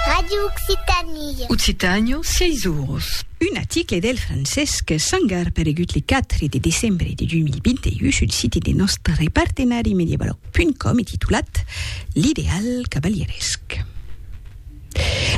Radio Occitanie. Occitània, sièis oros. Un article del Francesc Sangar paregut le 4 de decembre de 2021 sul site de nòstre partenari medievaloc.com e titulat L'ideal cavalieresc.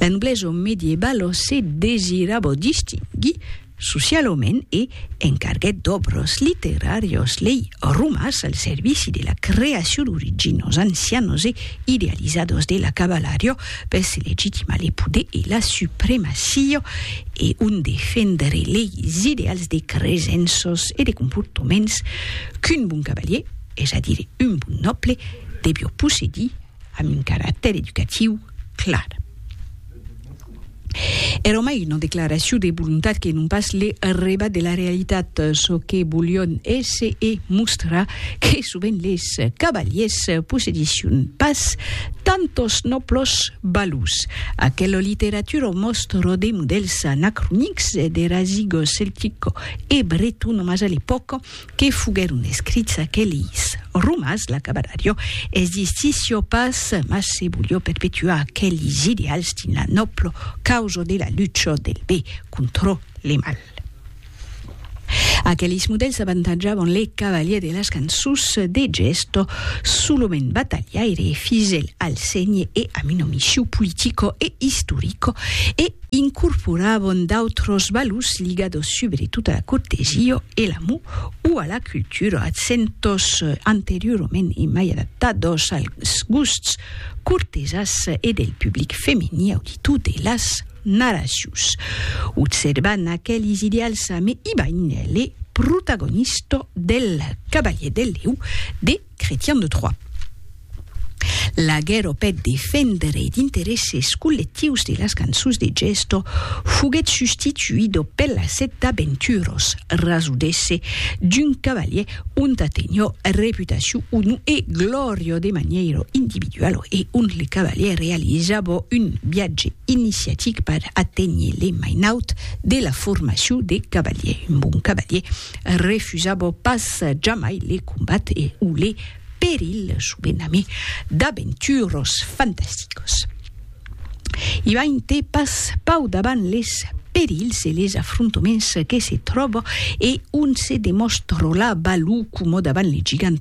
La noblesa medievalo se desirabo distinguir Socialament e encarguèt d'òbras literàrias lei romas al servici de la creacion d'originos ancianos e idealizados de la cavalariá per se legitimar le poder e la supremacia e ont defendre leis ideals de cresenças e de comportaments qu'un bon cavalier, es a dire un bon nòble, devió possedir. Amb un caractèr educatiu clar. Èra mai una declaracion de volontat que non pas le rebat de la realitat, çò que volion èsser e mostrar que sovent les cavaliers possedission pas tant los nòblos valors. Aquela literatura mòstra de modèls anacronics e de rasigo celtico e breton mas a l'epòca que foguèron escrits aquelis romans, la cabalarió existissió pas, mas se volió perpetuar aquelis ideals dins la nòblo causa de la lucha del be contra le mal. Aquelis modèls avantatjavan le cavalier de las cançons de gèsta, solament batalhaire e fidèl al sénher e a una missiu politica e istorica, e, incorporabon d'autros valors ligados subretot a la cortesia e l'amor o a la cultura, accentòs anteriorament e mai adaptados als gusts cortesas e del public femení auditor de las narracions. Observant aquelis ideals ame Ibain, le protagonista del Cavalier del Lèu de Cretian de Troyes. La guèrra peth defendre es d'interesses collectivs de las cançons de gèsto foguèt substituido per la set d'aventuros, rasudesse d'un cavalier onta tenho reputacion onu e glòrio de maniero individualo e ont le cavalier realizavo un viatge iniciatic per aténher le mainaut de la formacion de cavalier. Un bon cavalier refusabo pas jamai le combat e o le peril sovent ami d'aventuros fantasticos. Ivainte pas pau davant les perils e les afrontoments que se tròbo e on se demòstro la balou como davant le gigant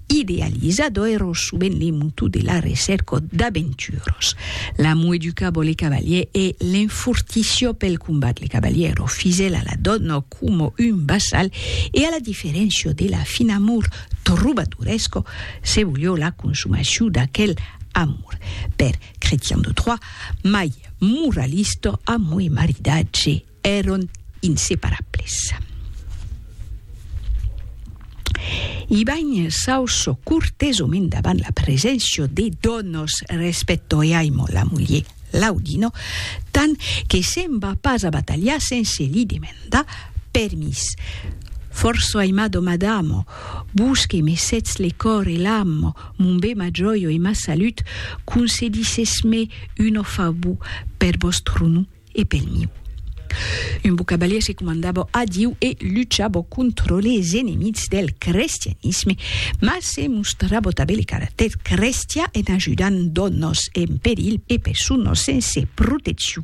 Idealizado ero subent li mutu de la recèrca d'aventuros. L'amo educabo li cavalier e l'enfortissió pel combat. Li cavalier ero fisèl a la dòna coma un vassal e a la diferéncia de la fin amor trobadoresco, se volió la consumacion d'aquel amor. Per Chretian de Troyes, mai moralista amo e maridatge. Èron inseparables. I banh s'auçò cortesomènt davant la preséncia de donos respècto e aimo la mulher Laudino tant que se'n va pas a batalhar sense li demandar permís. Forço aimado madamo, vos que me sètz le còr e l'amo, mon be ma jòio e ma salut, concedissèsme un ofau per vòstro nom e pel miu. Un bon cavalier se comandabo a Diu e luchabo contro les enemics del crestianisme, mas se mostrabo tabé le caractèr crestian en ajudant d'ònos en perilh e personas sense protecciu.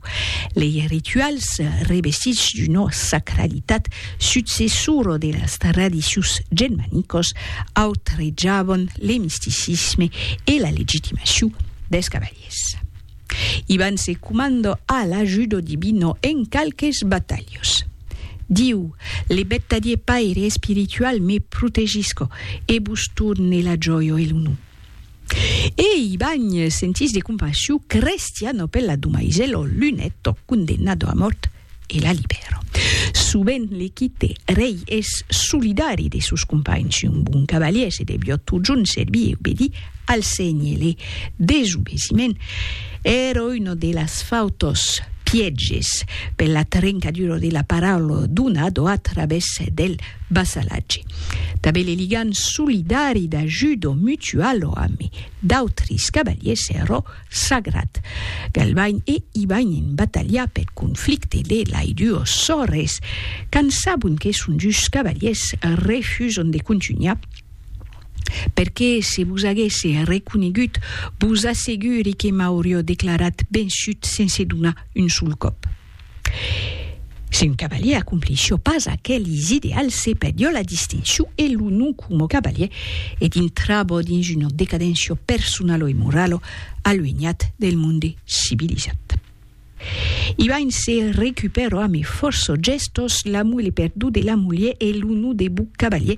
Lei rituals revestits d'una sacralitat, successora de las tradicions genmanicas, autrejavan le misticisme e la legitimacion dels cavaliers. Ivan se comando a l'ajudo divino en qualques batalhos. Diu, Le bettadie Paire espiritual me protegisco e vos torne la joio e l'onor. E Ivan, sentís de compassion crestiano per la domaiselo lunetto condemnado a mort, e la libèra. Sovent le quite rei es solidari de sos companhs, un bon cavalièr se deviá totjorn servir e obedir al sénher. Le desobesiment èra una de las fautas pièges per la trencadura de la paraula donada a través del vassalatge. Tanben le ligam solidari d'ajuda mutuala amb d'autres cavalièrs èra sagrat. Galvain e Ivain en batalha peth conflicte de lai duo sòrres, quand sabon que son dus cavaliers, refuson de contunhar, per que se vos aguesse reconegut, vos asseguri que m'aurió declarat vençut sense donar un sol còp. Si un cavalier acomplissió pas aquelis ideals, se perdió la distincion e lo nom coma cavalier e dintrabó dins una decadencion personalo e moralo aluenhat del monde civilizat. Ibain se recupèrò a me fòrço gèstos l'amor e le perdó de la mulher e lo nom de bon cavalier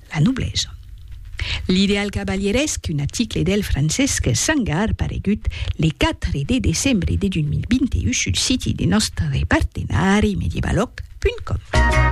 La noblesa. L'ideal cavalieresc, un aticle del Francesc Sangar paregut le 4 de decembre de 2021 sul siti de nòstre partenari medievalòg.com.